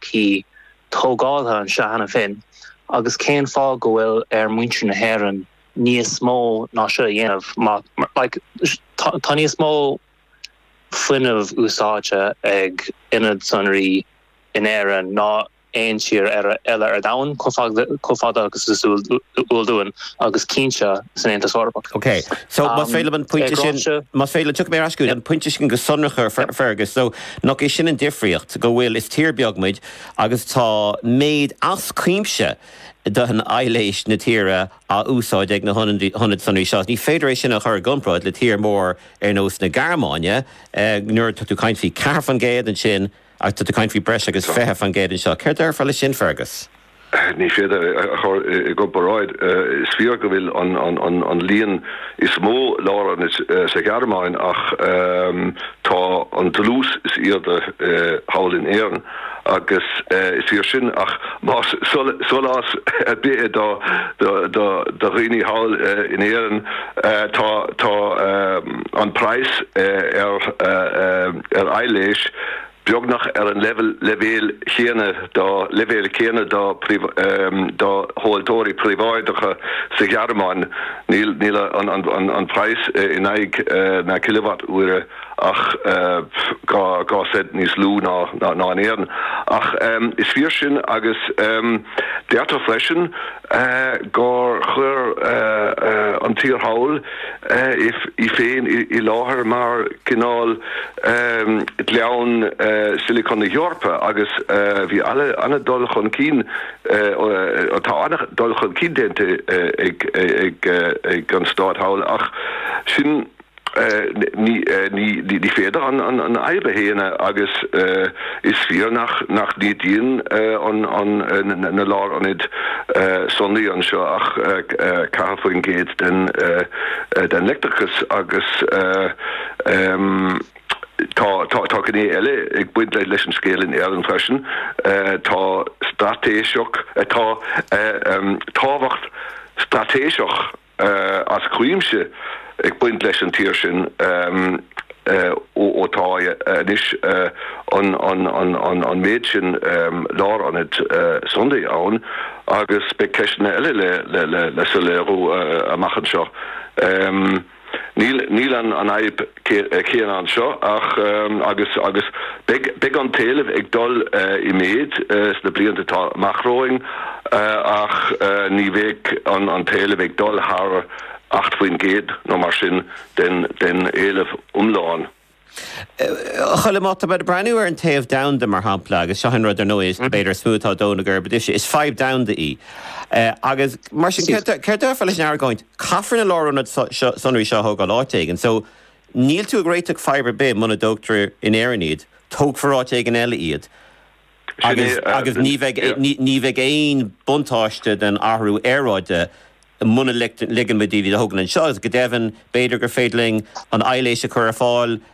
P, tógáltha anseo cheana féin agus cén fáth go bhfuil ar muintir na hÉireann níos mó ná seo a dhéanamh má, like, tá níos mó fuinnimh úsáidte ag ionad sonraí in Éirinn ná aon tír eile ar domhan, chomh fada agus is eol dúinn, agus cinnte san Aontas Eorpach. OK, so más féidir liom an pointe sin, más féidir liom, tiocfaidh mé ar ais go dtí an pointe sin go sonrach ach Fergus, so, Nach é sin an difríocht, go bhfuil, is tír beag muid agus tá méid as cuimse d'aibhléis na tíre á úsáid ag na hionaid sonraí seo. Ní féidir é sin a chur i gcomparáid le tír mór ar nós na Gearmáine, nuair atá tú ag caint faoi 4% ansin agus tá tú ag caint faoi breis agus 20% anseo. Céard déarfá le sin Fergus? Ní féidir é a chur i gcomparáid. Is fíor go bhfuil an líon is mó lárionad sa Ghearmáin ach tá an dlús is airde thall in Éirinn agus is fíor sin ach más solás ar bith é do dhaoine thall in Éirinn tá an praghas ar aibhléis beagnach ar an leibhéal céanna dá leibhéal céanna dá dá thomhaltóirí príobháideacha sa Ghearmáin, níl níl an an an praghas in aghaidh na cileawatt uaire ach dhá dhá cent níos lú ná ná ná in Éirinn. Ach is fíor sin agus deirtear freisin, gur chuir an tír thall í féin i láthair mar cineál Ghleann Silicon na hEorpa agus bhí an-dul chun cinn, tá an-dul chun cinn déanta ag an stát thall ach sin. Ní féidir an fhadhb a shéanadh agus is fíor nach n-ídíonn na lárionaid sonraí anseo ach 4% den leictreachas agus tá gné eile ag baint leis an scéal in Éirinn freisin tá tábhacht straitéiseach. as cuimse ag baint leis an tír sin ó tá anois an méid sin lárionad sonraí ann agus beidh ceisteanna eile le soiléiriú amach anseo. Níl an fhadhb céanna seo ach agus agus beidh an t-éileamh ag dul i méid sna blianta atá amach romhainn ach ní bheidh an t-éileamh ag dul thar 8 faoin gcéad nó mar sin den éileamh iomlán. A Choilm, má tá tú ag breathnú ar an taobh domhanda, mar shampla, agus seo an rud, ar ndóigh, is b'fhéidir is mó atá ag dó na geirbe duitse, is fadhb domhanda í agus mar sin céard a déarfá leis an argóint, Caithfear na lárionaid sonraí seo a thógáil áit éigin, so níl tú ag réiteach fadhb ar bith muna dtógtar in Éirinn iad, tógfar áit éigin eile iad. Agus agus ní bheidh ní bheidh aon buntáiste den athrú aeráide muna ligeann muid dóibh iad a thógáil anseo agus go deimhin b'fhéidir gur féidir linn an aibhléis a chur ar fáil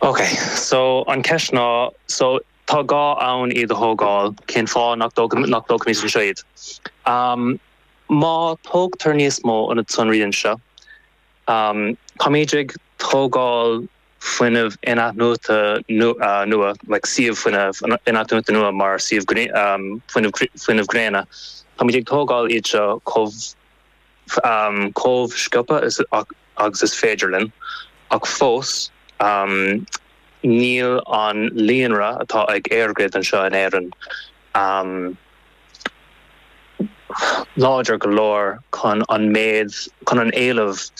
Ok so an cheist ná so tá gá ann iad a thógáil cén fáth nach dtóg nach dtógfaimid anseo iad? Am má tógtar níos mó ionad sonraí anseo am táimid ag tógáil fuinneamh in-athnuaite nua like suíomh fuinnimh in-athnuaite nua mar suíomh am fuinneamh fuinneamh gréine táimid ag tógáil iad seo chomh chomh sciobtha agus is féidir linn, ach fós níl an líonra atá ag EirGrid anseo in Éirinn láidir go leor chun an méid, chun an éileamh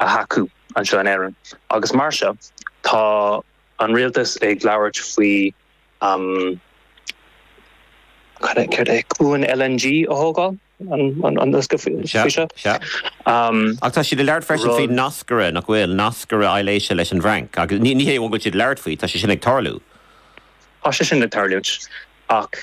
a thacú anseo in Éirinn agus mar seo tá an rialtas ag labhairt faoi cad é, céard é, cuan LNG a thógáil. Ach tá siad ag labhairt freisin faoi nascaire nach bhfuil nascaire aibhléise leis an bhFrainc agus ní hé amháin go bhfuil siad ag labhairt faoi, tá sé sin ag tarlú. Tá sé sin ag tarlúint ach.